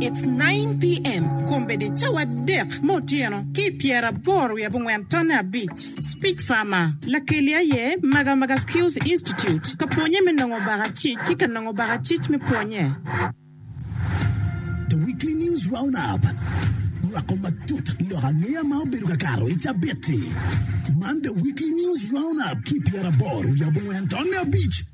It's nine PM kombeddi cawa adek me otyeno ki i pyera aboro wiye abongwen tonne abic. Speech Farmer. Lakeli aye Maga Maga Skills Institute ka pwonye me nongo baka cic ki ka nongo baka cic me pwonye. The Weekly News Roundup nywako matut lok angeya ma obedo ka kato i cabit-ti. Man The Weekly News Roundup ki i pyera aboro wiye abongwen tonne abic.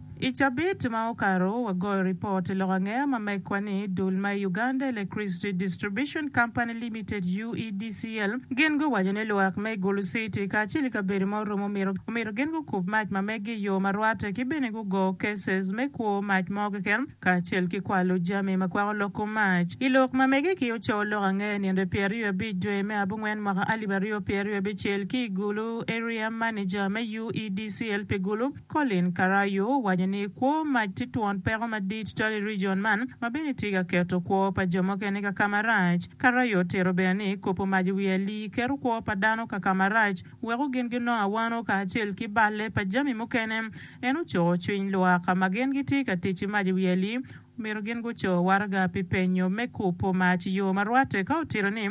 I cabit ma okato, wagoyo ripot i lok angeya ma megwa ni dul ma i Uganda Electricity Distribution Company Limited, UEDCL, gin guwaco ni lwak me Gulu City kacel ki kabedo ma orumo omito omito gin gukub mac ma meggi i yo ma rwatte ki bene gugo cases me kwo mac mo keken kacel ki kwalo jami ma kwako loko mac. I lok ma mege ki ocoyo lok angeya i nino pyeraryo abic dwe me abongwen mwaka alip aryo pyeraryo abicel ki i Gulu Area Manager me UEDCL pi Gulu, Colin Karayu owaco ni kwo mac tye twon peko madit tutwal i rijion man ma bene tye ka keto kwo pa jo mukene kaka marac. Karayu otito bene ni kopo mac i wi alii keto kwo pa dano kaka marac weko gin ginongo awano kacel ki balle pa jami mukene. En ocuko cwiny lwak ma gin gitye ka tic ki mac i wi alii Myero gin guco waraga pi penyo me kubo mac yo ma rwatte ka otito ni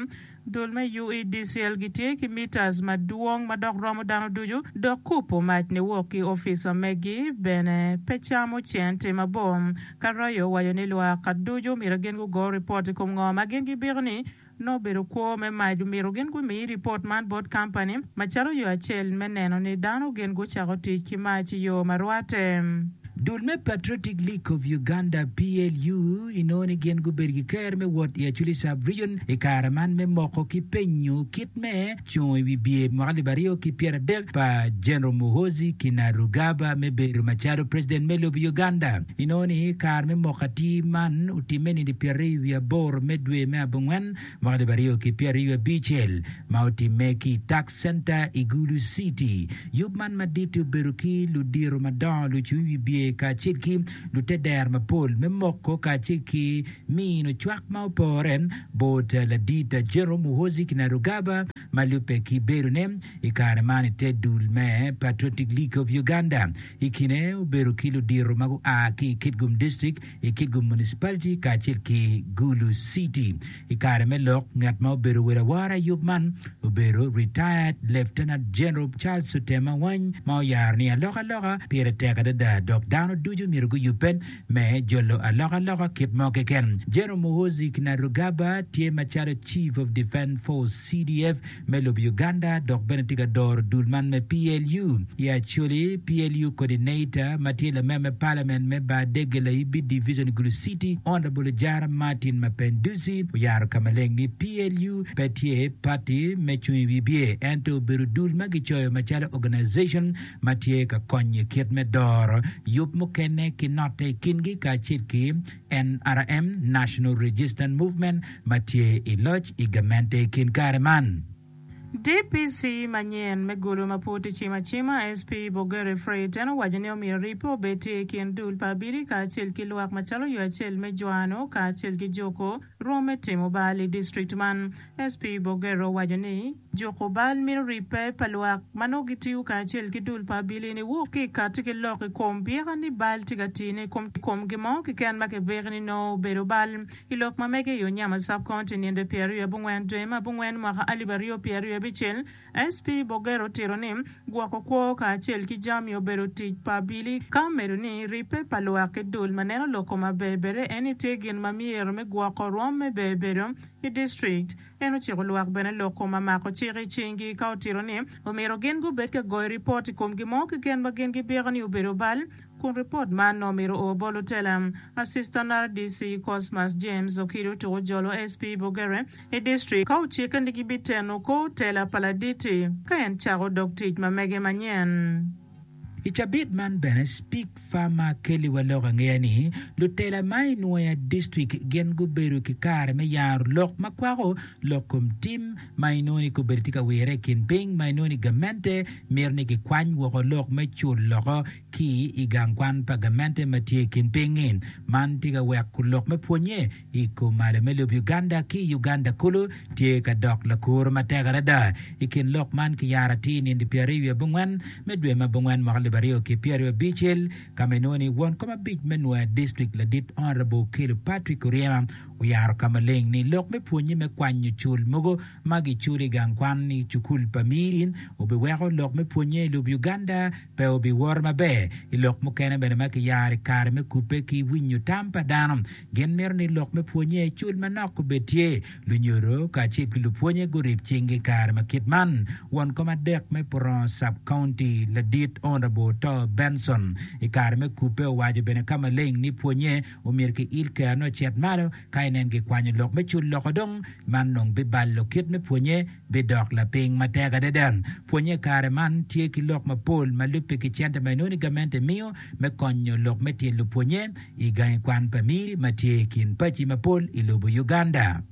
dul me UEDCL gitye ki mitas madwong ma dok romo dano ducu dok kubo mac niwok ki opica megi bene pe camo centi mabor. Karraio owaco ni lwak ducu myero gin gugo ripot i kom ngo ma gin gibiko ni Nongo bedo kwo me mac omito gin gumi ripot man bot kampani macalo yo acel me neno ni dano gin gucako tic ki mac i yo ma rwatte. Dul me Patriotic League of Uganda, PLU, inongo ni gin gubedo ki ker me wot i Acholi Sub-Region i kare man me moko ki penyo kit me. cungo i wi bye mwaka alip aryo ki pyeradek pa General Muhoozi Kinarugaba me bedo macalo President me lobo Uganda. Inongo ni kare me moko atir man otimme nino pyeraryo wiye aboro me dwe me abongwen mwaka alip aryo ki pyeraryo wiye abicel ma otimme ki i Tax Center i Gulu City. Yub man madit-ti obedo ki ludito madongo, lucung i wi bye kacel ki luteddero mapol me moko kacel ki Mino cwak ma opore bot Ladit Jerome Muhoozi Kainerugaba ma lubbe ki bedone i kare man i te dul me Patriotic League of Uganda. I kine obedo ki ludito ma gua ki i Kitgum District, i Kitgum Municipality kacel ki Gulu City. I kare me lok, ngat ma obedo wel awora i yub man obedo Retired Lieutenant General Charles Otema Wany ma oyaro ni alokaloka pire tek adada dok dano ducu myero guyubbe me jolo alokaloka kit mo keken. General Muhoozi Kainerugaba tye macalo Chief of Defence Force, CDF, me lobo Uganda dok bene tye ka doro dul man me PLU. I Acholi, PLU Coordinator ma tye lamer me Parliament me Baadege Laibi Division Gulu City, Honourable Ojara Martin Mapenduzi oyaro ka maleng ni PLU pe tye party me cung i wi bye ento obedo dul ma gicoyo macalo organization ma tye ka konyo i kit me doro yub mukene ki note i kingi kacel ki NRM, National Resistance Movement, ma tye i loc i gamente i kin kare man. DPC manyen me gulu ma pud tye cim acima, SP Bogerwe Fred, en owaco ni omyero ribbe obed tye i kin dul pa abili kacel ki lwak macalo yo acel me jwano kacel ki juko rwom me timo bal i district man. SP Bogerwe owaco ni. Juko bal mito ribbe pa lwak ma nongo gitiyo kacel ki dul pa abilii ni wuk ki kati ki lok i kom byeka ni bal tye ka tine i kom gin mo kiken ma kibiki ni nongo obedo bal. I lok ma mege i Onyama Sub County ninde pi aryo abungwen dwe me abungwen mwaka alip aryo pye aryo abicel, SP Boger otito ni gwoko kwo kacel ki jami obedo tic pa abilii ka omedo ni ribbe pa lwak ki dul ma neno loko ma ber bere eni tye gin ma myero me gwoko rwom me ber bedo i district En ociko lwak bene loko ma mako cik i cingi ka otito ni omyero gin gubed ka goyo ripot i kom gin mo keken ma gin gipiko ni obedo bal, kun ripot man nongo omyero o bot lutela. Assistant RDC Cosmas James Okido tuko jolo SP Bogerwe i district ka ocikke ni gibiteno kor tela pa Laditi ka en cako dog tic ma mege manyen. I cabit man bene Speak Pharma kelliwa lok angeya ni lutela ma i Nwoya District gin gubedo ki kare me yaro lok ma kwako lok kom tim ma inongo ni kobedi tye ka wirre i kin piny ma inongo ni gamente mito ni kikwany woko lok me cul loko ki i gang kwan pa gamente ma tye i kin piny-ngi. Man tye ka weko lok me pwonnye I kom malo me lub Uganda ki i Uganda kulu tye ka dok lakuro matek adada. I kin lok man kiyaro atir nindi pyeraryo wiye abongwen me dwe ma abongwen mwaka alip aryo ki pyeraryo abicel ka ma inongo ni won kom abic me nwoya district ladit Honourable Okello Patrick Oryema oyaro ka maleng ni lok me pwonye me kwanyo cul mogo ma giculo i gang kwan i cukul pa Miri obiweko lok me pwonye i lub Uganda pe obiworo maber. I lok mukene bene ma kiyaro i kare me kubbe ki winyo tam pa dano Gin mito ni lok me pwonnye cul manok obed tye. Lunyodo kacel ki lupwonnye gurib cinggi i kare ma kit man. Won kom adek me Purong Sub-County, Ladit Honourable Tor Benson, i kare me kubbe owaco bene ka maleng ni pwonnye omyero ki il kero ne ocit malo ka inen gikwanyo lok me cul loko dong man nong bibalo kit me pwonnye bidok lapiny matek adada. Pwonye i kare man tye ki lok mapol ma lubbe ki cente ma inongo ni gamente miyo me konyo lok me tyen lupwonnye i gangi kwan pa Miri ma tye i kin paci mapol i lobo Uganda.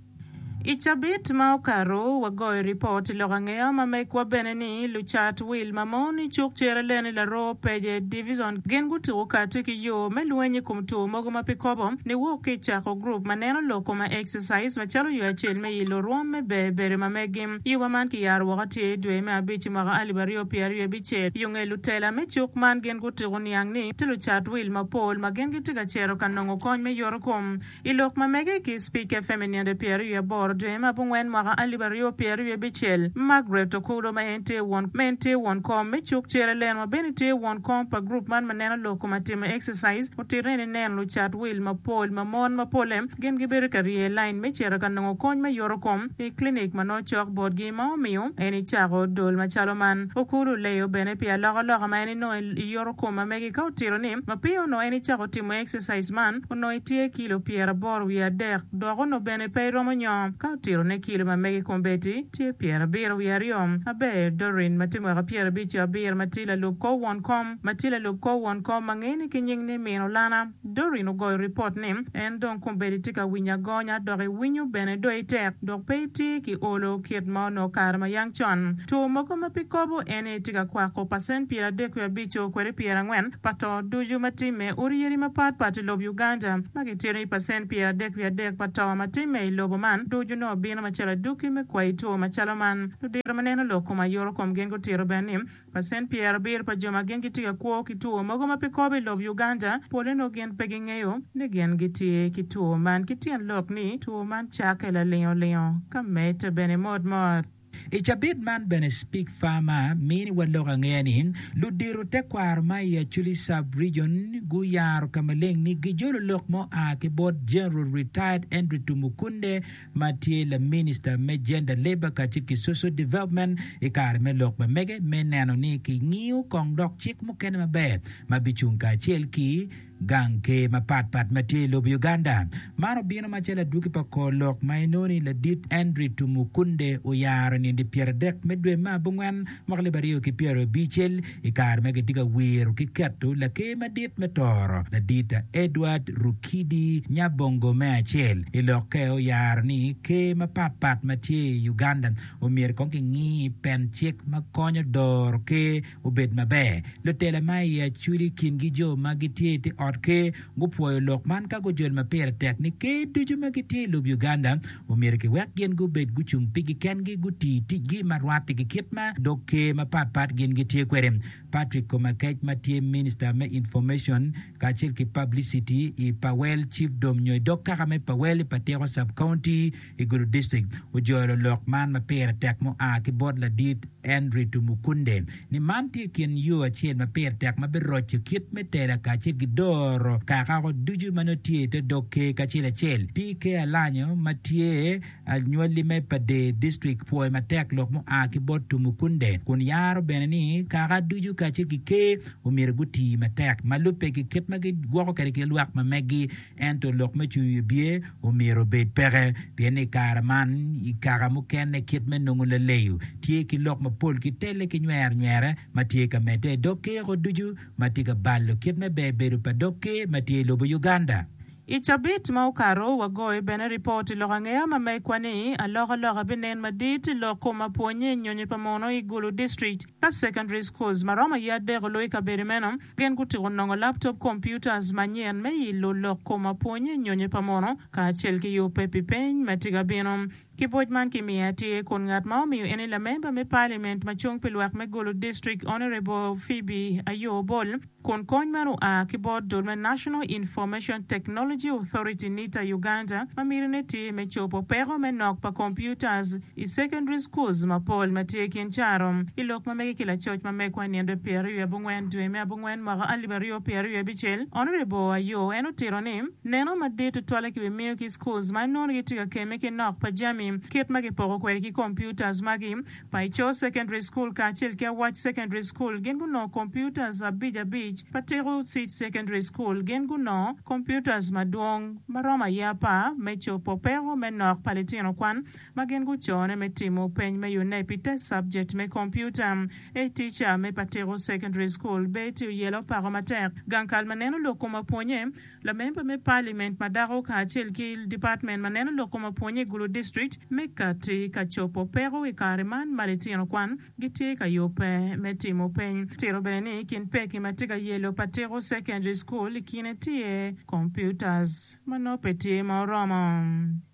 I cabit ma okato, wagoyo ripot i lok angeya ma megwa bene ni lucat wil ma mon i cuk Cereleni, Laroo, Peje Divison gin gutuko kati ki yo me lweny i kom two mogo ma pe kobo niwok ki i cako gurup ma neno lok kome, exercise, macalo yo acel me i lurwom me ber bere ma megi. Yuba man ki yaro woko tye i dwe me abic i mwaka alip aryo pye aryo abicel. Yo nge lutela me cuk man gin gutuku niang ni tye lucat wil mapol ma gin gitye ka cito ka nongo kony me yoto kom i lok ma mege ki Speaker FM i ninde pye aryo aboro dwe me abungwen mwaka alip aryo pye aryo abicel. Margaret Okulo ma en tye won ma en tye won kom me cuk cere leno ma bene tye won kom pa group man ma neno lok kom atimo exercise otito ni neno lucat wil mapol ma mon ma pole Gin gibedo ka rye i lain me cito ka nongo kony me yoto kom i klinik ma nongo cok botgi. Ma omiyo en icako dol macalo man. Okulu leyo bene pi alokaloka ma en inongo i yoto kom ma megi ka otito ni, Mapiyo onongo en icako timo exercise man, onongo itye kilo pyeraboro wiye adek dok onongo bene pe iromo nyongo. Ka otito ne kilo ma megi kombeddi, tye pyerabiro wiye aryo. Aber, Doreen, ma tye mwaka pyerabic-co abiro ma tye lalub kor won kom, ma tye lalub kor won kom ma ngene ki nying ni Min Olana, Doreen ogoyo ripot ni, En dong kombeddi tye ka winyo agonya dok iwinyo bene do itek dok pe itye ki olo kit ma onongo kare ma yang con. Two mogo ma pi kobo en ni tye ka kwako pacent pyeradek wiye abico kwede pyerangwen pa to ducu ma timme. Odi yadi mapat pat i lob Uganda ma gitito ni pacent pyeradek wiye adek pa to ma timme i lobo man ducu nongo bino macalo adwoki me kwayo two macalo man. Ludiro ma neno lok kom aye oro kom gin gutito bene ni Pacent pyer abir pa jo ma gin gitye ka kwo ki two mogo ma pe kobo i lob Uganda, pole nongo gin pe gingeyo ni gin gitye ki two man ki tyen lok ni two man cakke lalingo lingo ka medde bene mot mot. I cabit man bene Speak Farmer mini wa lok angeya ni ludito tekwaro ma i Acholi Sub Region guyaro ka maleng ni gijolo lok ma oa ki bot General Retired Henry Tumukunde ma tye laminista me Gender, Labour kacel ki Social Development i kare me lok ma mege me neno ni kingiyo kong dok cik mukene maber ma bicung kacel ki gang ker mapat pat ma tye i lobo Uganda. Man obino macalo adwogi pa kor lok ma inongo ni Ladit Andrew Tumukunde oyaro nindi pyera dek me dwe ma abongwen Mwaka lib aryo ki pyero abicel, i kare ma kitye ka wiro ki keto Laker Madit me Toro, Ladita Edward Rukidi Nyabongo me acel i lokke oyaro ni ker mapat pat ma tye i Uganda omyero kong kingi pen cik ma konyo doro ker obed maber. Lutela ma iye acul i kingi jo ma gitye i te ot ker gupwoyo lok man ka gujol ma pire tek ni ker ducu ma gitye i lub Uganda omyero kiwek gin gubed gucung pigi kengi, guti ticgi ma rwattigi kit ma dog ker mapat pat gin gitye kwede. Patrick Komakec ma tye Minista me Information kacel ki Publicity i Powell Chiefdom nyo i dog kaka me Powell i Patiko Sub-County i Gulu District, ojolo lok man ma pire tek mua ki bot ladit Henry Tumukunde. ni man tye kin yo acel ma pire tek ma biroco kit me tela kacel ki doro kakako ducu ma nongo tye i te dog Ker kacel acel. Pi Ker Alanyo ma tye anywali me Pade District pwoyo matek lok mua ki bot Tumukunde kun yaro bene ni kaka ducu kacel ki Ker omyero guti matek ma lubbe ki kit ma gigwoko kwede ki lwak ma megi. Ento lok me cwiny wi bye omyero obed peke, pien i kare man, i kaka mukene kit me nongo laleyo tye ki lok mapol ki telle ki nywernywerre ma tye ka medde i dog kiko ducu ma tye ka balo kit me ber bedo pa dog ker ma tye i lobo Uganda. I cabit ma okato, wagoyo bene ripot i lok angeya ma megwa ni, Alokaloka binen madit i lok kom apwonye nyonyo pa mono i Gulu District ka Secondary Schools ma romo iye adek olo i kabedo meno. Gin gutyeko nongo laptop computers manyen me ilo lok koma pwony nyonyo pa mono kacel ki yubbe pi peny ma tye ka bino. Kiboc man kimiyo atir kun ngat ma omiyo eni lamemba me parliament macung pi lwak me Gulu district Honourable Phoebe Ayoo Obol kun kony man oa ki bot dul me National Information Technology Authority, NITA, Uganda ma mitine tye me cobo peko me nok pa computers I secondary schools mapol ma tye i kin caro, i lok ma mege ki lacoc ma megwa i nino pyeraryo i abongwen dwe me abongwen mwaka alip aryo pyeraryo abicel, Honourable Ayoo en otito ni, Neno madit tutwalle ki wi miyo ki schools ma inongo ni gitye ka kemme ki nok pa jami kit ma kipoko kwede ki computers magi. Pa Ico Secondary School kacel ki Awac Secondary School gin gunongo computers abic abic, pa Teko City Secondary School gin gunongo computers madwong ma romo aya apar me cobo peko me nok pa litino kwan, ma gin gucone me timo peny me Unep pi te cabjet me kompiuta. A Tica me Patiko Secondary School, Betty oyelo pako matek gang kal ma neno lok kom apwonye, lamemba me paliment ma dako kacel ki dipatmen ma neno lok kom apwonye i Gulu District me Kati ka cobo peko i kare man ma litino kwan gitye ka yubbe me timo peny. Tito bene ni i kin pekki ma tye ka yelo Patiko Secondary School i kine tye, Computers ma nongo pe tye ma oromo.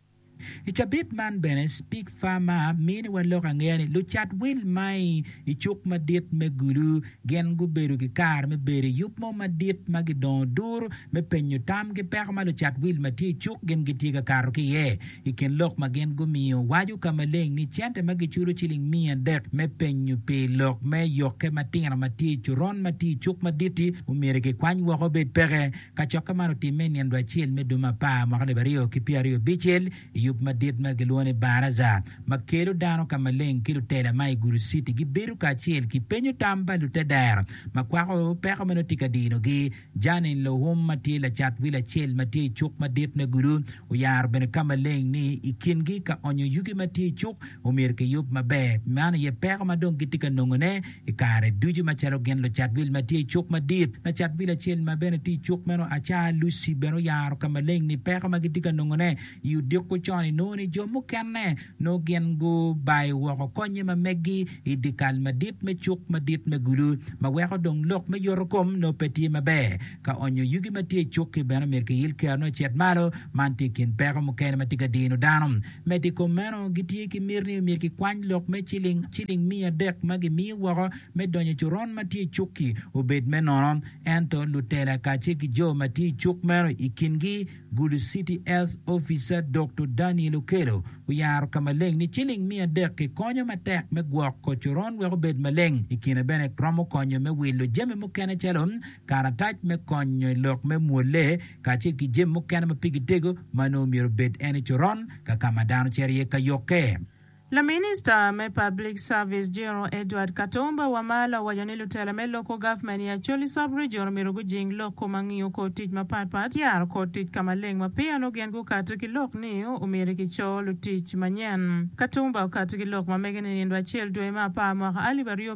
I cabit man bene, Speak Pharma mini wa lok angeya ni lucat wil mai i cuk madit me Gulu gin gubedo ki kare me bedo i yub mo madit ma gidongo dur me penyo tam ki peko ma lucat wil ma tye i cuk gin gitye ka kato ki iye. I kin lok ma gin gumiyo, waco ka maleng ni cente ma giculo ciling miya adek me penyo pi lok me yokke matino ma tye i coron ma tye i cuk madit-ti omyero kikwany woko obed peke. Kacokke man otimme i nino acel me dwe me apar mwaka alip aryo ki pyeraryo abicel i yub madit ma gilwongo ni Baraza ma kelo dano ka maleng ki lutela ma i Gulu Citi gibedo kacel ki penyo tam pa lutedero ma kwako peko ma nongo tye ka dinogi. Janine Lohum ma tye lacat wil acel ma tye i Cuk Madit me Gulu oyaro bene ka maleng ni i kingi ka onyo yugi ma tye i cuk omyero kiyub maber man aye peko ma dong gitye ka nongone I kare ducu macalo gin lucat wil ma tye i cuk madit, lacat wil acel ma bene tye i cuk meno, aca Lucy, bene oyaro ka maleng ni peko ma gitye ka nongone i odiko con-ni nongo ni jo mukene nongo gin gubayo woko konnye ma meggi i dyekal madit me cuk madit me gulu ma weko dong lok me yotokom nongo pe tye maber. Ka onyo yugi ma tye i cukki bene myero kiyil ki ano ocit malo. Man tye i kin peko mukene ma tye ka dino dano. Medo i kom meno, gitye ki miti ni myero kikwany lok me ciling ciling miya adek ma gimiyo woko me donyo coron ma tye i cukki obed me nono. Ento lutela kacel ki jo ma tye i cuk meno, i kingi Gulu City Health Officer Doktor Daniel Okello, oyaro ka maleng ni ciling miya adek kikonyo matek me gwoko coron wek obed maleng. I kine bene romo konyo me wilo jami mukene calo. karatac me kony nyo i lok me mwolle, kacel ki jami mukene ma pigi tego ma onongo myero obed en i coron ka ka ma dano cito iye ka yukke. Laminista me Public Service, General Edward Katumba Wamala owaco ni lutela me loko gavmen i Acholi Sub-Region myero gujing loko ma ngiyo kor tic mapat pat, yaro kor tic ka maleng ma peya onongo gin gukati ki lok ni omyero kico lutic manyen. Katumba okati ki lok ma mege ninindo acel dwe me apar mwaka alip aryo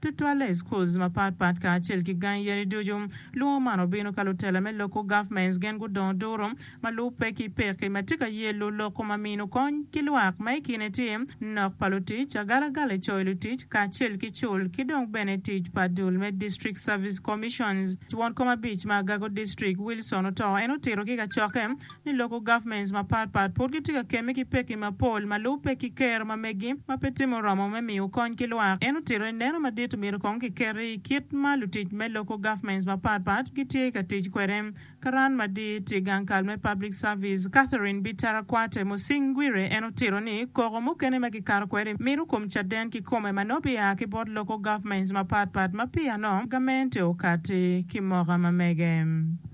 Tutwalle i schools mapat pat kacel ki gangi yadi ducu. Lwongo man obino ka lutela me local governments gen gudongo duru ma lubbe ki pekki ma tye ka yello loko ma mino kony ki lwak ma ikine tye nok pa lutic, agalagala coyo lutic kacel ki cul ki dong bene tic pa dul me district service commissions. Twon kom abic ma agago district Wilson oto en otito ki kacokke. ni local governments mapat pat pud gitye ka kemme ki pekki mapol ma lubo pekki ker ma megi ma pe timo romo me miyo kony ki lwak. En otito ni neno madit omyero kong kiketi i kit ma lutic me local governments mapat pat gitye ka tic kwede. Karan madit i gang kal me public service, Catherine Bitarakwate Musingwire en otito ni koko mukene ma kikato kwede mito kom caden kikome ma nongo bia ki bot local governments mapat pat ma piyano gamente okati ki moko ma mege.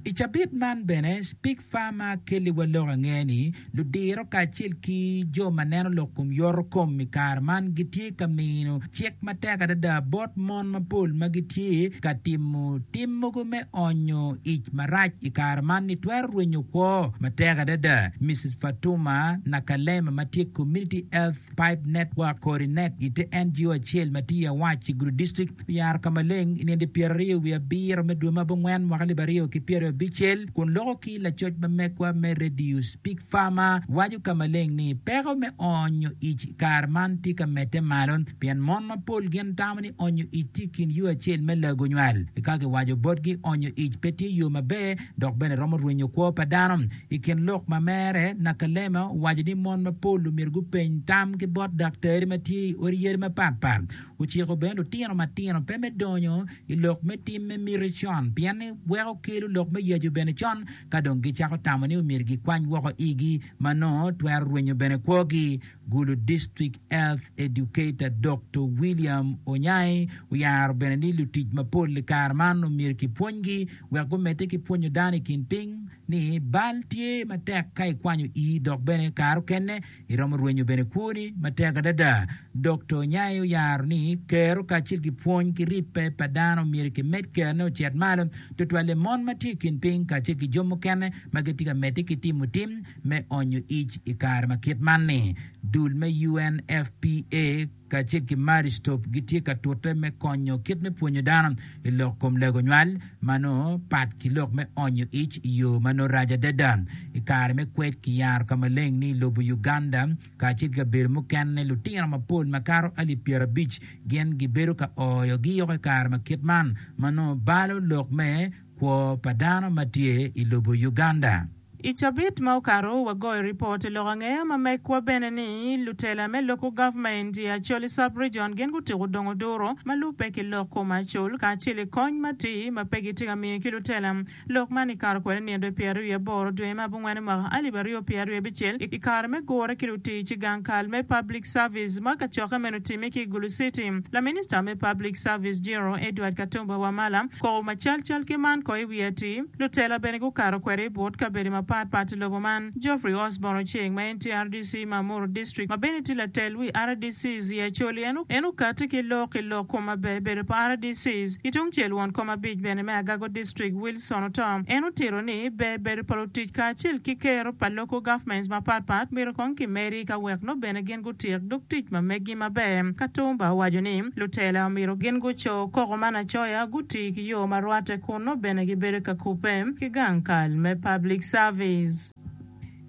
I cabit man bene, Speke Farmer kelliwa lok ange ni ludiro kacel ki jo ma neno lok kom yoto kom i kare man gitye ka mino cik matek adada bot mon mapol ma gitye ka timo tim mogo me onyo ic marac i kare man ni twero rwenyo kwo matek adada. Misis Fatuma Nakalema ma tye Community Health Pipe Network Coordinator i te NGO acel ma tye i Awaci Gudo District, Yaro ka maleng i nende pyeraryo wiye abiro me dwe ma abongwen mwaka alip aryo ki pyeraryo abicel kun loko ki lacoc ma megwa me Radius, Pig Farmer, waco ka maleng ni peko me onyo ic i kare man tye ka medde malo pien mon mapol gin tamo ni onyo ic tye i kin yo acel me lago nywal. Ka kiwaco botgi onyo ic pe tye yo maber dok bene romo rwenyo kwo pa dano. I kin lok ma mere, Nakalema owaco ni mon mapol omyero gupeny tam ki bot daktari ma tye i odi yadi mapatpat Ociko bene lutino matino pe me donyo i lok me tim me miti con, pien ni weko kelo lok me yacu bene con ka dong gicako tamo ni omyero gikwany woko igi ma nongo twero rwenyo bene kwogi. Gulu District Health Educator Doktor William Onyai oyaro bene ni lutic mapol i kare man omyero kipwonygi wek gumedde ki pwonyo dano i kin piny ni bal tye matek ka ikwanyo ii dok bene kare okene Iromo rwenyo bene kwoni matek adada. Dokta Onyaye oyaro ni kero kacel ki pwony ki ribbe pa dano myero kimed kerone ocit malo, tutwalle mon ma tye i kin piny kacel ki jo mukene ma gitye ka medde ki timo tim me onyo ic i kare ma kit man-ni. Dul me UNFPA, kacel ki Marie Stopes gitye ka tute me konyo kit me pwonyo dano i lok kom lego nywal ma nongo pat ki lok me onyo ic i yo ma nongo rac adada. I kare me kwed, kiyaro ka maleng ni i lobo Uganda kacel ki kabedo mukene, lutino mapol makato alip pyerabic gin gibedo ka oyo giyoko i kare ma kit man ma nongo balo lok me kwo pa dano ma tye i lobo Uganda. I cabit ma okato, wagoyo ripot i lok angeya ma mekwa bene ni lutela me loko gavment i Acholi Sub-Region gin gutyeko dongo duru ma lubbe ki lok kom Achol kacel i kony matir ma pe gitye ka miyo ki lutela lok man i kato kwede nino pyeraryo wiye aboro dwe me abongwen mwaka alip aryo pyeraryo abicel i kare me gure ki lutic i gang kal me Public Service ma kacokke meno otimme ki i Gulu City. Laminista me Public Service General Edward Katumba Wamala kobo macalcal ki man ko i wi George, lutela bene gukato kwede i but kabedo mapat pat i lobo man. Geoffrey Osborn Oceng ma en tye rdc ma Muru District ma bene tye latel wi rdc Zia Acholi en en okati ki lok i lok kom maber bedo pa rdcs. Ki tungcel won kom abic bene me Agago District Wilson Otom en otito ni ber bedo pa lutic kacel ki kero pa Local Governments mapat pat myero kong kimedi ka wek nongo bene gin gutik dog tic ma megi maber. Katumba owaco ni, Lutela omyero gin guco koko man acoya, guti ki yo ma rwatte kun nongo bene gibedo ka kubbe ki gang kal me Public Service.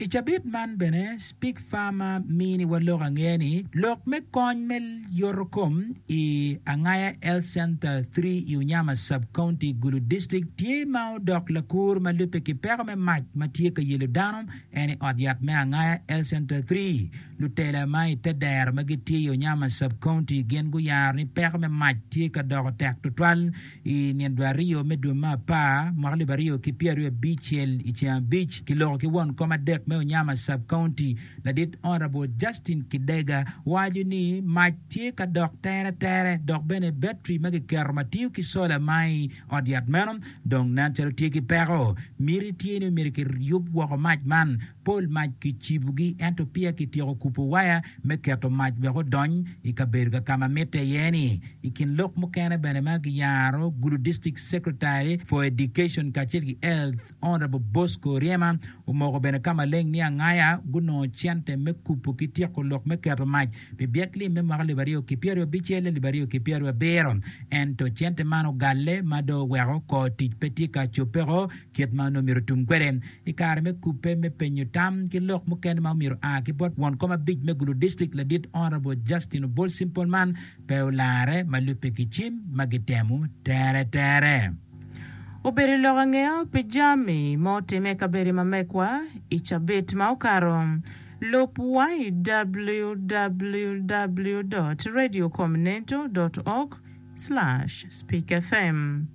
I cabit man bene, Speak Pharma mini wa lok angeya ni lok me kony me yoto kom i Angaya Health Center three i Unyama Sub-County, Gulu District tye ma odok lakur ma lubbe ki peko me mac ma tye ka yelo dano En i ot yat me angaya El Centro Three. Lutela ma i te dero ma gitye i Onyama Sub-County gin guyaro ni peko me mac tye ka doko tek tutwal i nino dwe aryo me dwe me apar mwaka alip aryo ki pyeraryo ki abicel i ceng abic ki loko ki won kom adek me Onyama Sub-County ladit Honourable Justin Kidega waco ni mac tye ka dok tere tere dok bene battery ma kiketo ma tiyo ki solar ma i Ot yat meno dong nen calo tye ki peko. Miti tye ni omyero kiyub woko mac man, pol mac kicibogi ento peya kityeko kubo waya me keto mac wek odony i kabedo ka ka ma mitte iye-ni. I kin lok mukene bene ma giyaro, Gulu District Secretary for Education kacel ki Health, Honourable Bosco Ryema omoko bene ka maleng ni Angaya gunongo cente me kubo ki tyeko lok me keto mac pi byek lim me mwaka alip aryo ki pyeraryo abicel alip aryo ki pyeraryo abiro ento cente man ogalle ma dong oweko kor tic pe tye ka cobbeko kit ma onongo myero otum kwede i kare me kubbe me penyo tam ki lok mukene ma omyero oa ki bot won kom abic me Gulu District ladit Honourable Justin Obol Simple man pe olarre ma lubbe ki cim ma gitemo tere tere. Obedo lok angeyo pi jami ma otimme i kabedo ma mekwa i cabit ma okato? Lub wa i www dot radio comnento dot org slash speak fm.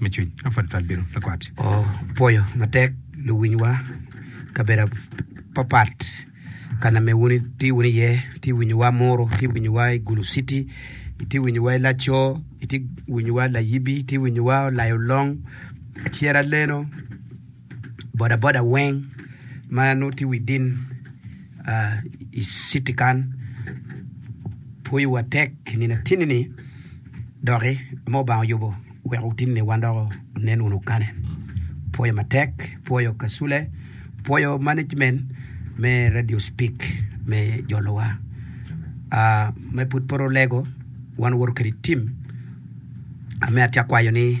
me cwiny ma padi pat bedo lakwat. Opwoyo matek luwinywa kabedo apapat ka name wun itye wunu iye, itye winyowa Muru, itye winyowa i Gulu city, itye winyowa i Laco, itye winyowa Layibi, itye winyowa Olayo Long, Acera Leno, bodaboda weng ma nongo tye widin i citi kan pwoyo wa tek i nino atini ni doki ma Lubanga oyubo wek otin ni wan dok onen wunu kane pwoyo matek pwoyo kacule pwoyo management me radio speak me jolo wa ma pud pe olego wan woto kwede i tim ame atye akwayo ni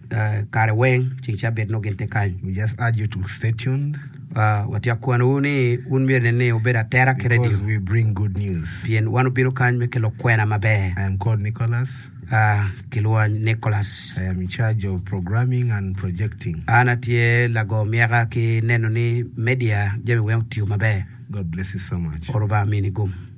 kare weng ceng cabit nongo gin tye kany. We just urge you to stay tuned. Watye kwanowu ni wun myero nen ni wubedo atera ki radio. Because we bring good news. Pien wan obino kany me kelo kwena maber. I am called Nicholas. Kilwonga ni Nicholas. I am in charge of programming and projecting. An atye lago myeka ki neno ni media jami weng otiyo maber. God bless you so much. Oro Lubanga mini gum.